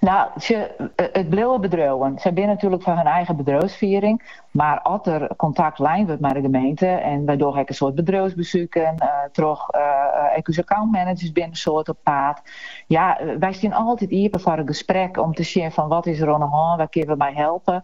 Nou, sjoch, eh, it bliuwe bedriuwen. Sy binne natuerlik foar har eigen bedriuwsfiering, mar as der kontakt lein wurdt mei de gemeente, en wy dogge ek in soad bedriuwsbesuken eh, troch eh, ek ús accountmanagers binne in soad op paad. Ja, wy stean altyd iepen foar in gesprek om te sjen fan wat is der oan 'e hân, wêr kinne we mei helpe.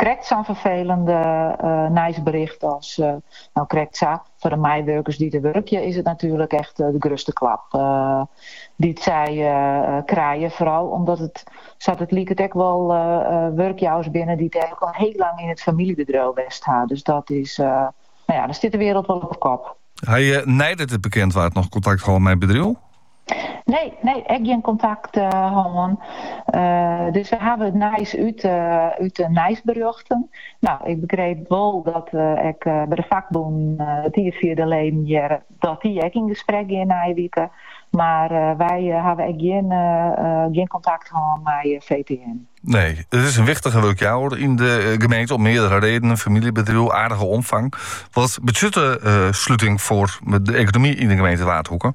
Krekt sa'n ferfelend nijsbericht as, no krekt sa, foar de meiwurkers dy't der wurkje is it natuerlik echt de grutste klap dy't sy krije, foaral omdat it sa't it liket ek wol wurkjouwers binne dy't einlik al hiel lang yn it famyljebedriuw west ha. Dus dat is, no ja, dan stiet de wereld wol op 'e kop. Ha je neidat it bekend waard noch kontakt hân mei it bedriuw? Nee, nee, ek gjin kontakt hân. dus we hawwe it nijs út, út de nijsberjochten. Nou, ik begreep wol dat ek by de fakbûn it jier fia de leden hearre dat dy ek yn gesprek gean nije wike. Mar wy hawwe ek gjin, gjin kontakt hân mei VTM. Nee, it is in wichtige wurkjouwer yn de eh, gemeente om meardere redenen. Famyljebedriuw, aardige omfang. Wat betsjut de eh, sluting foar de ekonomy yn de gemeente Waadhoeke?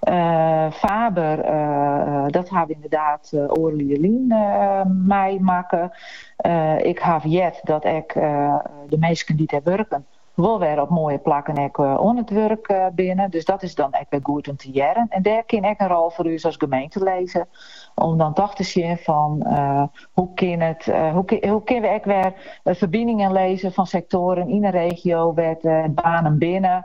Eh, Faber, eh, dat ha we ynderdaad eh, oardel jier lyn eh, meimakke. Eh, ik haw heard dat ek eh, de minsken dy't der wurken wol wer op moaie plakken ek eh, oan it wurk eh, binne. Dus dat is dan ek wer goed om te hearren. En dêr kin ek in rol foar ús as gemeente lizze. Om dan toch te sjen fan eh, hoe, kin it, eh, hoe, kin- hoe kinne we ek wer eh, ferbiningen lizze fan sektoaren yn de regio wêr't eh, banen binne.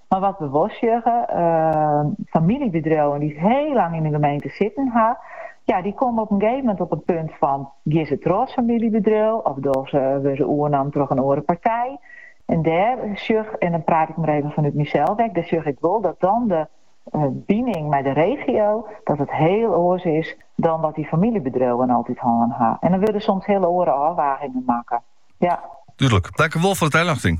Mar wat we wol sjogge, famyljebedriuwen dy't hiel lang yn in gemeente sitten ha, ja, dy komme op in gegeven moment op in punt fan, gean se troch as famyljebedriuw of docht se, wurdt se oernommen troch in oare partij. En dêr sjoch, en dan praat ik mar even fanút mysels ek, dêr sjoch ik wol dat dan de bining mei de regio, dat it hiel oars is dan wat dy famyljebedriuwen altyd hân ha. En dan wurde soms hiel oare ôfwagingen makke. Ja. Dúdlik. Tankewol foar de taljochting.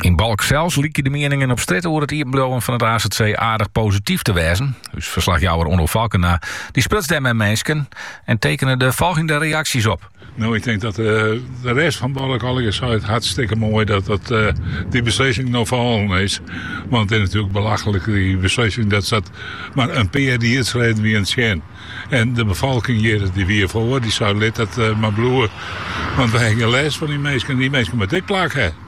Yn Balk sels lykje de mieningen op strjitte oer it iepenbliuwen fan it AZC aardich posityf te wêzen. Us ferslachjouwer Onno Falkena dy spruts dêr mei minsken en tekene de folgjende reaksjes op. Nou, ik tink dat eh, de rest fan Balk allegear seit, hartstikke moai dat, dat eh, dy beslissing no fallen is. Want it is natuerlik belachlik, dy beslissing, dat, dat mar in pear riedsleden wiene tsjin. En de befolking hjir, dy wie der foar, dy sei, lit dat eh, mar bliuwe. Want wy ha gjin lêst fan dy minsken, dy minsken moatte in plak hawwe.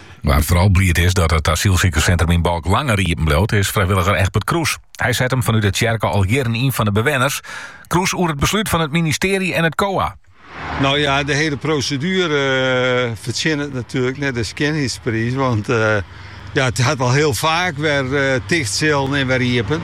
Wa't foaral bliid is dat it asylsikerssintrum yn Balk langer iepen bliuwt, is frijwilliger Egbert Kroes. Hy set him fanút de tsjerke al jierren yn foar de bewenners. Kroes oer it beslút fan it ministearje en it COA. Nou ja, de hele proseduere fertsjinnet natuerlik net de skjinheidspriis, want ja, it hat al hiel faak wer ticht sillen en wer iepen.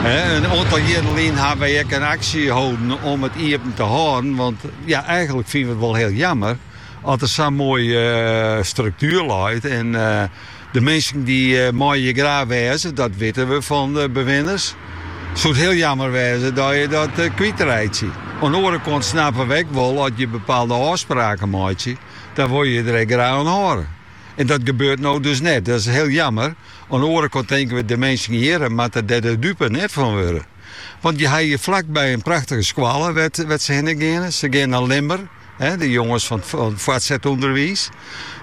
In oantal jierren lyn hawwe wy ek in aksje holden om it iepen te hâlden, want ja, eigenlik fine we it wol hiel jammer. As der sa'n moaie struktuer leit en de minsken dy meie hjir graach wêze, dat witte we fan de bewinners, soe it hiel jammer wêze dat je dat kwytreitsje. Oan de oare kant snappe we ek wol as je bepaalde ôfspraken meitsje, dan wol je je der ek graach oan hâlde. En dat gebeurt no dus net. Dat is hiel jammer. Oan de oare kant tinke we, de minsken hjir moatte der de dupe net fan wurde. Want je ha hjir flakby in prachtige skoalle wêr't se hinne geane. Se geane nei Lemmer. de jonges fan it fuortset ûnderwiis.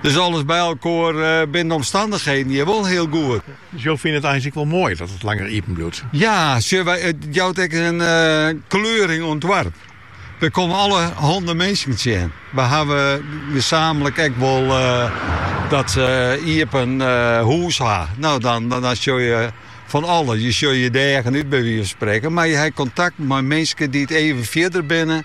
Dus alles by elkoar eh, binne de omstandigheden hjir wol hiel goed. Dus jo fine it eins ek wel mooi dat het langer iepen bliuwt? Ja, het jout ek in eh, kleuring oan it doarp. We komme allerhanne minsken tsjin. We hawwe gesamenlik ek wol eh, dat se iepen uh, hûs ha. Nou, dan, dan, dan sjogge je fan alles. Je sjogge je de eagen út by wize fan sprekken. Mar je ha kontakt mei minsken dy't even fierder binne.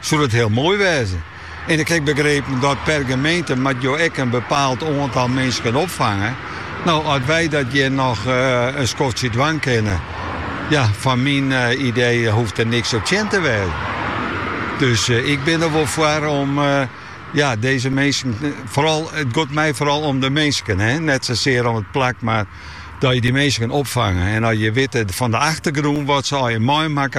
soe dat hiel moai wêze. En ik ha begrepen dat per gemeente moat jo ek in bepaald oantal minsken opfange. No, as wy dat hjir noch eh, in skoftsje dwaan kinne, ja, foar myn eh, idee hoecht der niks op tsjin te wêzen. Dus eh, ik bin der wol foar om ja, dizze minsken, foaral, it giet my foaral om de minsken. Hè? Net sasear om it plak, mar dat je dy minsken opfange. En as je witte fan de achtergrûn wat se al net meimakke